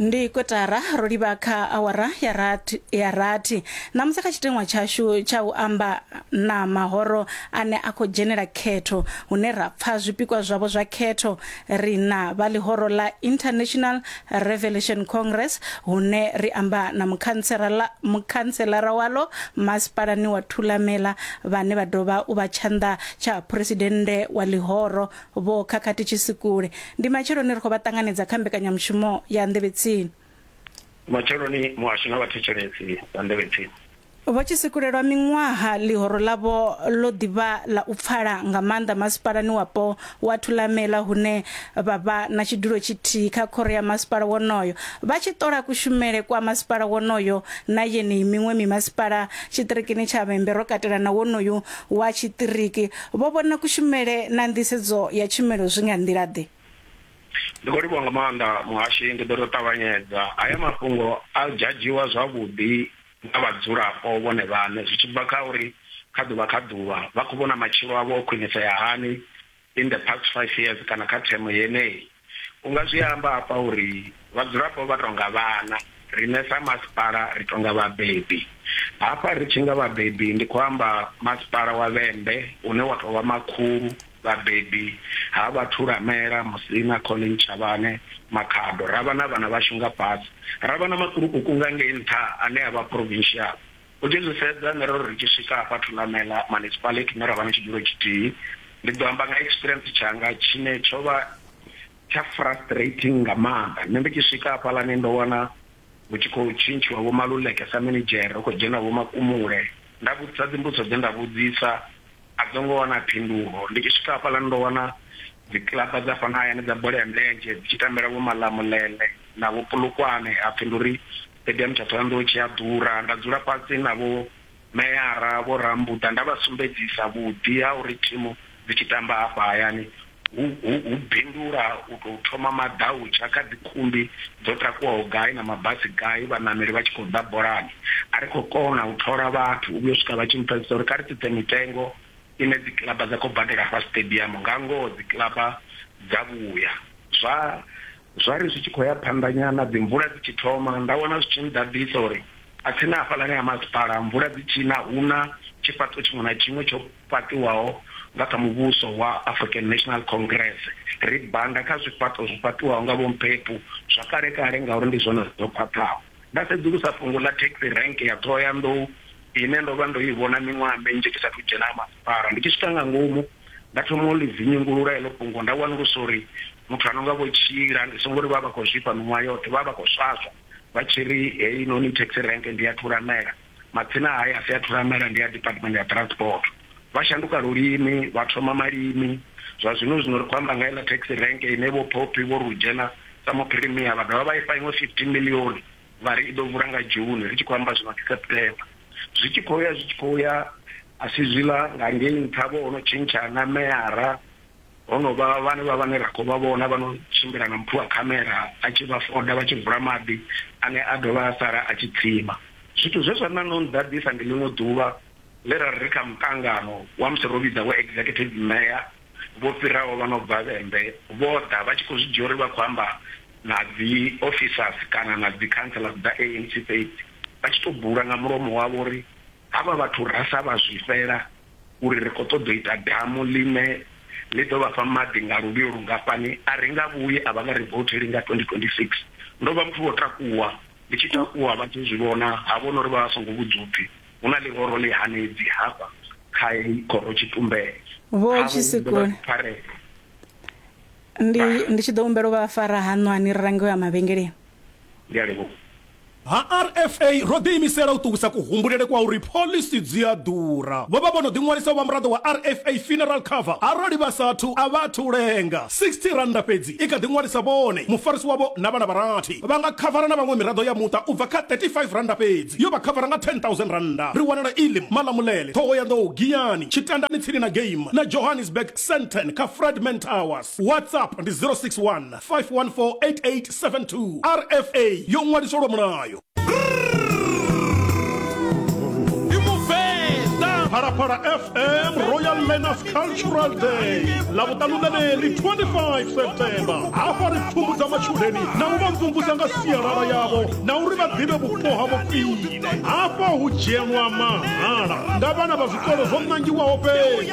ndi kotara ro livha kha awara ya rathi ya rathi ṋamusi kha tshiteṅwa tshashu tsha u amba na mahoro ane a khou dzhenela khetho hune ra pfa zwipikwa zwavho zwa khetho ri na vha ḽihoro ḽa international revelation congress hune ri amba na mukhantsela mukhantselara walo masipalani wa thulamela vhane vha dovha u vha tshanḓa tsha phuresidennde wa ḽihoro Vho Khakhathi Tshisikule, Ndi matsheloni ri khou vha ṱanganedza kha mbekanyamushumo ya Nḓevhe Tsini. Matsheloni muhasho na vhathetshelesi vha Nḓevhe Tsini. Vho Tshisikule, Lwa miṅwaha ḽihoro ḽavho ḽo ḓi vha ḽa u pfala nga maanḓa masipalani wapo wa Thulamela hune vha vha na tshidulo tshithihi kha khoro ya masipala wonoyo vha tshi ṱola kushumele kwa masipala wonoyo na yeneyi miṅwe mimasipala tshiṱirikini tsha Vhembe ro katela na wonoyu wa tshiṱiriki vho vhona kushumele na nḓisedzo ya tshumelo zwi nga nḓila-ḓe? Ndi khou livhuwa nga maanḓa muhashi, ndi ḓo tou ṱavhanyedza. Haya mafhungo a jadzhiwa zwavhuḓi nga vhadzulapo vhone vhaṋe zwi tshi bva kha uri kha ḓuvha kha ḓuvha vha khou vhona matshilo avho o khwinisea hani, in the past five years kana kha themo yeneyi. U nga zwi amba hafha uri vhadzulapo vha tou nga vhana, riṋe sa masipala ri tou nga vhabebi. Hafha ri tshi nga vhabebi ndi khou amba Masipala wa Vhembe une wa tou vha makhulu vhabebi ha vha Thulamela, Musina, Colleen Chavhane, Makhado. Ra vha na vhana vhashu nga fhasi, ra vha na makulukukungangei nṱha ane a vha provincial. U tshi zwi sedza, nṋe ro ri ri tshi swika hafha Thulamela Municipality hune ra vha na tshidulo tshithihi, ndi ḓo amba nga experience tshanga tshine tsho vha tsha frustrating nga maanḓa. Nṋe ndi tshi swika hafhaḽani ndo wana hu tshi khou tshintshiwa Vho Maluleke sa minidzhere, hu khou dzhena Vho Makumule. Nda vhudzisa dzimbudziso dze nda vhudzisa, a dzo ngo wana phindulo. Ndi tshi swika hafhaḽani ndo wana dzi kiḽaba dza fhano hayani dza bola ya milenzhe dzi tshi tambela Vho Malamulele na Vho Polokwane, ha pfi ndi uri Fhedzi ha mutsha Thohoyandou tshi a ḓura. Nda dzula fhasi na vho meyara vho Rambuḓa nda vha sumbedzisa vhuḓi ha uri thimu dzi tshi tamba afha hayani hu hu hu bindula u tou thoma maḓautsha kha dzikhumbi dzo takuwaho gai na mabasi gai vhaṋameli vha tshi khou ḓa bolani. A ri khou kona u thola vhathu u vhuya u swika vha tshi mpfesesa uri kha ri tsitse mitengo ine dzikiḽaba dza khou badela hafha siṱediamu. Nga ngoho dzikiḽaba dza vhuya zwa Zwa ri zwi tshi khou ya phanḓa nyana, dzimvula dzi tshi thoma, nda wana zwi tshi nḓaḓisa uri a tsini na hafhaḽani ha masipala, mvula dzi tshi na, hu na tshifhaṱuwo tshiṅwe na tshiṅwe tsho fhaṱiwaho nga kha muvhuso wa African National Congress. Ri banda kha zwifhaṱo zwo fhaṱiwaho nga Vho Mphephu zwa kale-kale ngauri ndi zwone zwo khwaṱhaho. Nda sedzulusa fhungo ḽa taxi rank ya Ṱhohoyanḓou ine ndo vha ndo i vhona miṅwaha minzhi ndi sa athu dzhena ha masipala. Ndi tshi swika nga ngomu, Nda thoma u ḽi dzinnyungulula heḽo fhungo nda wanulusa uri muthu a no nga Vho Tshila ndi songo ri vha vha khou zwifha miṅwaha yoṱhe, vha vha vha khou swaswa vha tshi ri heinoni taxi rank ndi ya Thulamela, madzina a hae a si a Thulamela ndi a Department ya Transport. Vha shanduka lulimi, vha thoma malimi. Zwa zwino zwino ri khou amba nga heiḽa taxi rank ine Vho Poppy Vho Rujena sa Muphirimia vha dovha vha i fha iṅwe R15 miḽioni. vha ri i ḓo vula nga June ri tshi khou amba zwino ndi September zwi tshi khou ya zwi tshi khou ya a si zwiḽa nga ngei nṱha vho hono tshintsha na meyara hono vha vhane vha vhane ra khou vha vhona vha no tshimbila na mphuwa khamera a tshi vha foda vha tshi vula maḓi ane a dovha a sala a tshi tsima zwithu zwe zwa ṋaṋa u nḓaḓisa ndi ḽiṅwe ḓuvha ḽe ra ri ri kha muṱangano wa musi ro vhidza vho executive mayor vho fhiraho vha no bva vhembe vho ḓa vha tshi khou zwi dzhia uri vha khou amba na dzi officers kana na dzi councillors dza ANC fhedzi vha tshi to bula nga mulomo wavho uri havha vhathu ra sa vha zwifhela uri ri kho ṱoḓa u ita damu ḽine ḽi ḓo vhafha maḓi nga luvhilo lungafhani a ri nga vhuyi a vha nga ri voutheli nga 2026. Ndo vha muthu vho takuwa ndi tshi takuwa vha tshi zwi vhona ha vhona uri vha vha songo vhudzwa upfi hu na ḽihoro ḽi hanedzi hafha kha heyi khoro tshitumbele Vho havho ndo vha Tshisekoni. pfarelo. Ndi ndi tshi ḓo humbela u vha fara haṋwani ri range u ya mavhengeleni. Ndi a livhuwa. Ha RFA, ro ḓiimisela u ṱuwisa kuhumbulele kwa uri phoḽisi dzi a ḓura. Vho vha vho no ḓiṅwalisa u vha muraḓo wa RFA Funeral Cover arali vha sa athu, a vha athu u lenga. R60 fhedzi i kha ḓi ṅwalisa vhone, mufarisi wavho na vhana vha rathi. Vha nga khavara na vhaṅwe miraḓo ya muṱa u bva kha R35 fhedzi. Yo vha khavara nga R10,000. Ri wanala Elim, Malamulele, Thohoyandou, Giyani, Tshitandani tsini na Game na Johannesburg. Sandton kha Fradman Towers. WhatsApp ndi 061 514 8872. RFA yo ṅwaliswa lwa mulayo. phalaphala fm royal manners cultural day lavutanu ḽeneḽi 25 septemba hafha ri pfumbudza matshudeni na u vha mvumvusa nga sialala yavho na uri vha ḓivhe vhupo havho khwine hafha hu dzhielwa mahala nga vhana vha zwikolo zwo nangiwaho fhedzi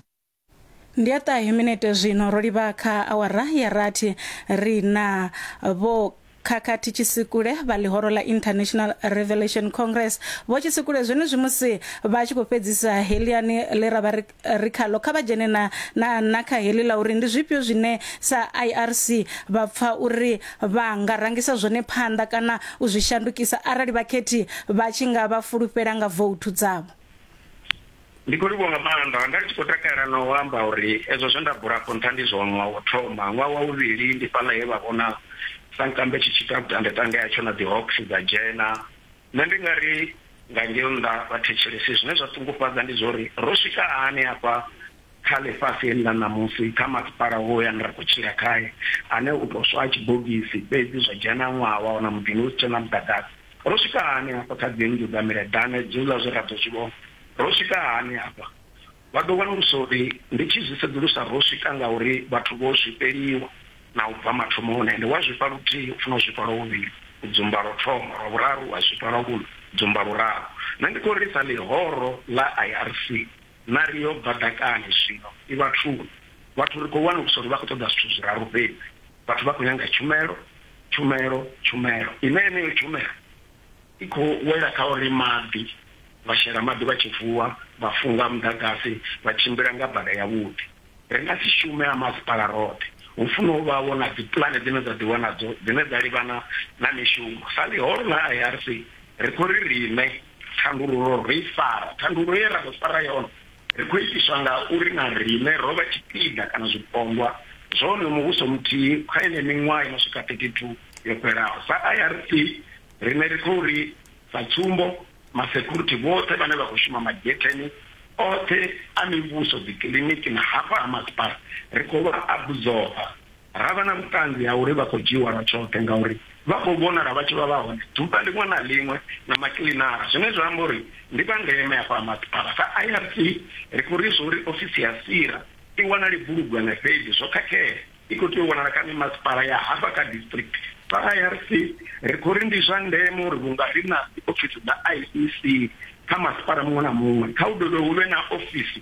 ndi a ṱahe minete zwino ro livha kha awara ya rathi ri na vho khakhathi tshisikule vha ḽihoro ḽa international revelation congress vho tshisikule zwenezwi musi vha tshi khou fhedzisa heliani ḽe ra vha ri khalo kha vha dzhene na na na kha heli ḽa uri ndi zwifhio zwine sa irc vha pfa uri vha nga rangisa zwone phanḓa kana u zwi shandukisa arali vhakhethi vha tshi nga vha fulufhela nga vouthu dzavho Ndi khou livhuwa nga maanḓa. Nda ndi tshi khou takalela na u amba uri ezwo zwe nda bula afho nṱha ndi zwone. Ṅwaha wo thoma, ṅwaha wa vhuvhili ndi fhaḽa he vha vhona sankambe tshi tshi ita vhutandeṱande hatsho na dzi Hawks dza dzhena. Nṋe ndi nga ri nga ngeo nnḓa vhathetshelesi zwine zwa ṱungufhadza ndi zwa uri ro swika hani hafha kha ḽifhasi heḽi ḽa ṋamusi, kha masipala hoyu ane ra khou tshila khae, ane u tou swa a tshibogisi fhedzi zwa dzhena ṅwaha wa wana muḓini hu si tshena muḓagasi. Ro swika hani hafha kha dzi nnḓu dza mileḓane dziuḽa zwe ra ḓo zwi vhona? Ro swika hani hafha? Vha ḓo wanulusa uri ndi tshi zwi sedzulusa ro swika ngauri vhathu vho zwifheliwa na u bva mathomoni, ende wa zwifha luthihi u funa u zwifha lwa vhuvhili, u dzumba lwo thoma, lwa vhuraru wa zwifha lwa vhuṋa, u dzumba luraru. Nṋe ndi khou lilisa ḽihoro ḽa IRC, na ri yo bva ḓakani zwino i vhathuni. Vhathu ri khou wanulusa uri vha khou ṱoḓa zwithu zwiraru fhedzi, vhathu vha khou nyanga tshumelo, Tshumelo, tshumelo ine yeneyo tshumelo i khou wela kha uri maḓi, vha shela maḓi vha tshi vuwa, vha funga muḓagasi, vha tshimbila nga bada yavhuḓi. Ri nga si shume ha masipala roṱhe. Hu funa u vha vho na dzipulane dzine dza ḓiwa nadzo dzine dza livhana na mishumo. Sa ḽihoro ḽa IRC, ri khou ri riṋe. Thandululo ro i fara. Thandululo ye ra ḓo fara yone, ri khou itiswa nga uri na riṋe ro vha tshipiḓa kana zwipondwa zwa wonoyo muvhuso muthihi kha yeneyi miṅwaha i no swika 32 yo fhelaho. Sa IRC, riṋe ri khou ri, sa tsumbo, masekhurithi vhoṱhe vhane vha khou shuma magetheni oṱhe a mivhuso, dzikiḽiniki na hafha ha masipala, ri khou vha abuzoba. Ra vha na vhuṱanzi ha uri vha khou dzhiiwa lwa tshoṱhe ngauri vha khou vhonala vha tshi vha vha hone ḓuvha ḽiṅwe na ḽiṅwe na makiḽinara, zwine zwa amba uri ndi vha ndeme afha ha masipala. Sa IRC, ri khou ri zwa uri ofisi ya SIRA i wanale Bulugwane fhedzi zwo khakhea, i khou tea u wanala kha mimasipala ya hafha kha district. Sa IRC, ri khou ri ndi zwa ndeme uri vhunga ri na dziofisi dza IEC kha masipala muṅwe na muṅwe, kha hu dovhe hu vhe na ofisi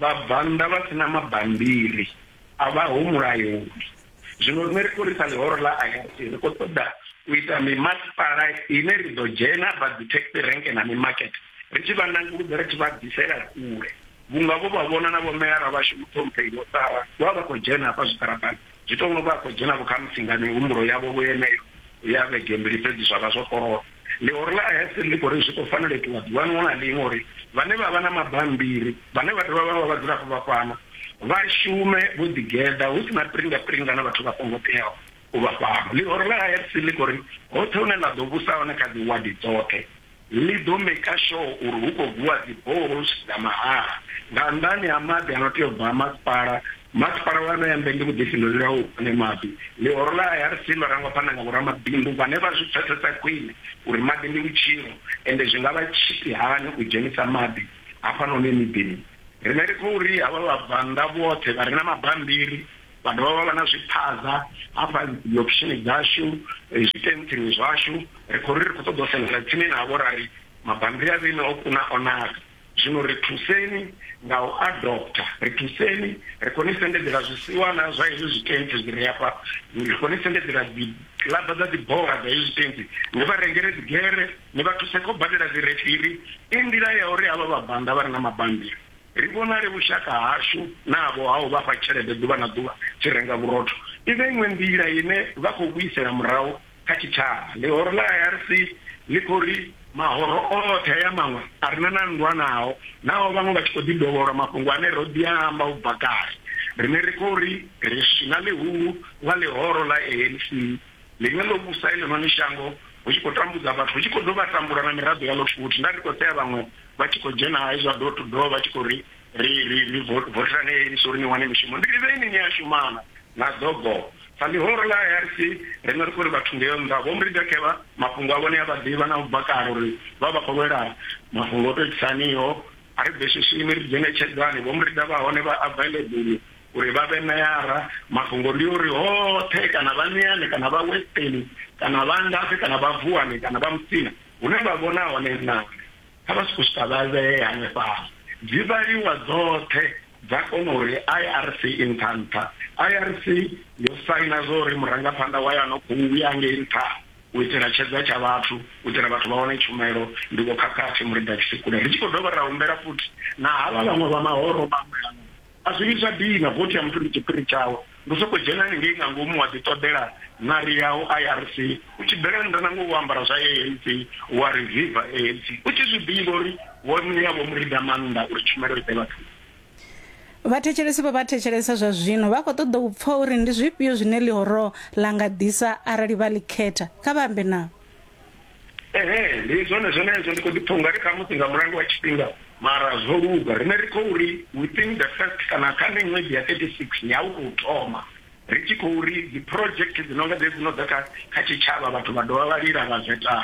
Vhabvannḓa vha si na mabambiri a vha ho mulayoni. Zwino riṋe ri khou risa ḽihoro ḽa ayasi, ri khou ṱoḓa u ita mimasipala ine ri ḓo dzhena hafha dzithekisi renke na mimakete ri tshi vha nanguludza ri tshi vha bvisela kule vhunga vho vha vhona na vhomeyara vhashu Muṱhomphei Vho Sara vha vha vha khou dzhena hafha zwiṱaraṱani. Zwi tou nga vha khou dzhena-vho khamusi nga mihumbulo yavho-vho yeneyo ya vhege mbili fhedzi zwa vha zwo koloda. Ḽihoro ḽa Hessel ḽi khou ri zwi khou fanela u itiwa ḓuvha ḽiṅwe na ḽiṅwe uri vhane vha vha na mabammbiri, vhane vha dovha vha vha vhadzulapo vha fhano, vha shume vho ḓigeḓa, hu si na piringa-piringa na vhathu vha songo teaho u vha fhano. Ḽihoro ḽa Hessel ḽi khou ri hoṱhe hune ḽa ḓo vhusa hone kha dziwadi dzoṱhe, Ḽi ḓo maker sure uri hu khou vuwa dzi boreholes dza mahala nga nnḓani ha maḓi a no tea u bva a masipala. Masipala wa ṋea Mvenge vhuḓifhinduleli ha u ufha ane maḓi. Ḽihoro ḽa IRC ḽo rangwa phanḓa nga vhoramabindu vhane vha zwi pfesesa khwine uri maḓi ndi vhutshilo ende zwi nga vha tshifhi hani u dzhenisa maḓi hafhanoni miḓini. Riṋe ri khou ri havha vhabvannḓa vhoṱhe vha re na mabambiri Vha dovha vha vha na zwiphaza hafha dziofishini dzashu, zwitentsini zwashu. Ri khou ri ri khou ṱoḓa u sendela tsini navho ra ri, Mabammbiri a vheiṋe o kuna o naka, zwino ri thuseni nga u a dobtha. Ri thuseni, ri khou ni sendedzela zwisiwana zwa hezwi zwitentsi zwi re afha, ri khou ni sendedzela dzikiḽaba dza dzibola dza hezwi zwitentsi. Ni vha rengele dzigere, ni vha thuse kha u badela dzirefiri. I nḓila ya uri havha vhabvannḓa vha re na mabammbiri Ri vhonale vhushaka hashu navho ha u vha fha tshelede ḓuvha na ḓuvha tshi renga vhurotho. I vha iṅwe nḓila ine vha khou vhuisela murahu kha tshitshavha. Ḽihoro ḽa IRC ḽi khou ri, Mahoro oṱhe haya maṅwe a re na na nndwa nao, naho vhaṅwe vha tshi khou ḓi dovholwa mafhungo ane ro ḓi a amba u bva kale, riṋe ri khou ri ri swina ḽihulu ḽa ḽihoro ḽa ANC. Ḽine ḽo vhusa heḽinoni shango hu tshi khou tambudza vhathu, hu tshi khou dovha ha tambula na miraḓo yaḽo futhi. Nda ri khou sea vhaṅwe vha tshi khou dzhena hai zwa door to door vha tshi khou ri, Ri, ri, ri vo, vothelani heyi NISO uri ni wane mishumo. Ndi ri, Vheni ni a shuma na? Na ḓo boo. Sa ḽihoro ḽa IRC, riṋe ri khou ri vhathu ngeo nnḓa, Vho Mridekeva, mafhungo avho ni a vha ḓivha na u bva kale uri vha vha khou lwela mafhungo o to itisaniho. A ri bveswiswini, ri dzhenetshedzani. Vho Mrida vha hone vha available Uri vha vhe meara, mafhungo ndi uri hoṱhe, kana vha Niani, kana vha Westeni, kana vha ngafhi, kana vha Vuwani, kana vha Musina, hune vha vhona hone ṋambi, kha vha sokou swika vha vhee hanefhaḽa. Dzi vhaliwa dzoṱhe dza kona uri IRC i nṱha nṱha. IRC yo saina zwa uri murangaphanḓa wayo a no khou ya ngei nṱha u itela tshedza tsha vhathu, u itela vhathu vha wane tshumelo, ndi Vho Khakhathi Muriḓa-Tshisekule. Ri tshi khou dovha ra humbela futhi na havha vhaṅwe vha mahoro maṅwe, A zwi vhi zwa dina, vothi ya muthu ndi tshiphiri tshawe. Ndi u sokou dzhena haningei nga ngomu wa ḓiṱoḓela ṋari yau IRC, u tshi bvela nnḓa na ngoho wo ambara zwa ANC, wa ri viva ANC, u tshi zwi ḓivha uri wo ṋea Vho Murida maanḓa uri tshumelo i ḓe vhathuni. Vhathetshelesi vho vha thetshelesa zwa zwino vha khou ṱoḓa u pfa uri ndi zwifhio zwine ḽihoro ḽa nga ḓisa arali vha ḽi khetha. Kha vha ambe navho. Ehe, ndi zwone zwenezwo. Ndi khou ḓipfa u nga ri khamusi nga mulandu wa tshifhinga, mara zwo luga. Riṋe ri khou ri, within the first kana kha miṅwedzi ya 36 ya u tou thoma, ri tshi khou ri dziproject dzi no nga dzedzi dzi no ḓa kha kha tshitshavha, vhathu vha dovha vha lila vha zweta.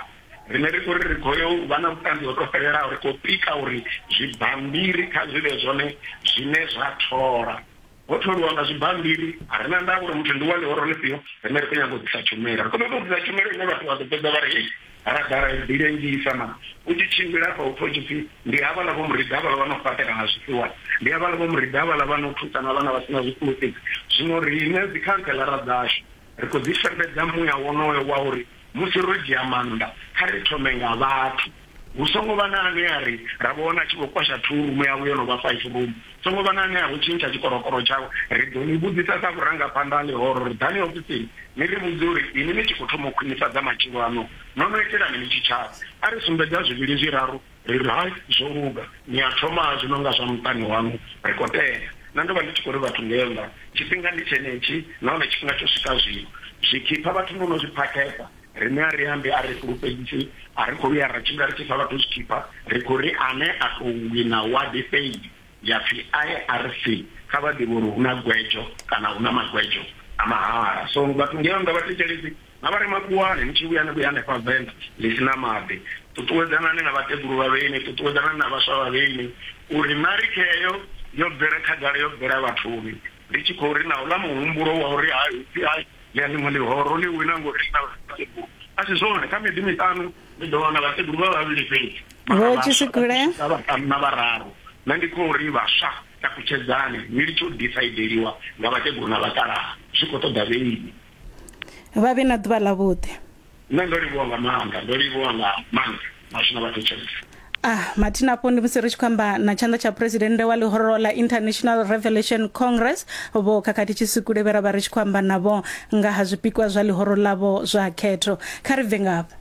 Riṋe ri khou ri ri khou yo u vha na vhuṱanzi ho tou fhelelaho, ri khou pika uri zwibammbiri kha zwi vhe zwone zwine zwa thola. Ho tholiwa nga zwibammbiri, a ri na ndavha uri muthu ndi wa ḽihoro ḽifhio, riṋe ri khou nyaga u ḓisa tshumelo. Ri khou ṱoḓa u ḓisa tshumelo ine vhathu vha ḓo fhedza vha ri, Hei, ha ra ḓala ri ḓilengisa. Mara u tshi tshimbila hafha hu pfa hu tshi pfi, Ndi havhaḽa vho Murida havhaḽa vha no fhaṱela nga zwifhiwa. Ndi havhaḽa vho Murida havhaḽa vha no thusa na vhana vha si na zwifulufhedzi. Zwino riṋe dzikhanseḽara dzashu. Ri khou ḓi sendedza muya wonoyo wa uri musi ro dzhia maanḓa, kha ri thome nga vhathu. Hu songo vha na ane a ri, Ra vhona a tshi khou kwasha thuu rumu yawe yo no vha faifi rumu. Songo vha na ane a vho tshintsha tshikorokoro tshawe. Ri ḓo ni vhudzisa sa vhurangaphanḓa ha ḽihoro uri, Ḓani ofisini ni ri vhudze uri inwi ni tshi khou thoma u khwinifhadza matshilo aṋu, no no itelani ni tshitshavha. A ri sumbedza zwivhili zwiraru Ri ri, Hai, zwo luga. Ni a thoma zwi no nga zwa muṱani waṋu. Ri khou tenda. Nṋe ndo vha ndi tshi khou ri vhathu ngei nnḓa, Tshifhinga ndi tshenetshi, nahone tshifhinga tsho swika zwino. Zwikhipha vhathu no no zwi phakhesa. Riṋe a ri ambi, a ri fhulufhedzisi, a ri khou vhuya ra tshimbila ri tshi fha vhathu zwikhipha. Ri khou ri, Ane a tou wina wadi fhedzi ya pfi IRC, kha vha ḓivhe uri hu na gwedzo, kana hu na magwedzo a mahala. So, vhathu ngei nnḓa vha thetshelesi. Na vha re makhuwani, ni tshi vhuya ni vhuye hanefha venḓa ḽi si na maḓi. Ṱuṱuwedzanani na vhakegulu vha vhenyu, ṱuṱuwedzanani na vhaswa vha vhenyu, uri na ri kheo yo bvela khagala, yo bvela vhathuni, ri tshi khou ri na uḽa muhumbulo wa uri hai hu pfi hai ḽi a ḽiṅwe ḽihoro ḽi wina ngori ḽi na vhakegulu. A si zwone, kha miḓi miṱanu ni ḓo wana vhakegulu vha vhavhili fhedzi, mara vhaswa vha tshi swika vhaṱanu na vhararu. Nṋe ndi khou ri, vhaswa, takutshedzani ni litshe u disaideliwa nga vhakegulu na vhakalaha, zwi khou ṱoḓa vhenyi. vha vhe na ḓuvha ḽavhuḓi. Nṋe ndo livhuwa nga maanḓa, ndo livhuwa nga maanḓa Mathina vha thetshelesa. Ah, Mathina afho ndi musi ri tshi khou amba na tshanḓa tsha presidennde wa ḽihoro ḽa International Revelation Congress vho Khakhathi Tshisukule vhe ra vha ri tshi khou amba navho nga ha zwipikwa zwa ḽihoro ḽavho zwa khetho. Kha ri bve ngafho.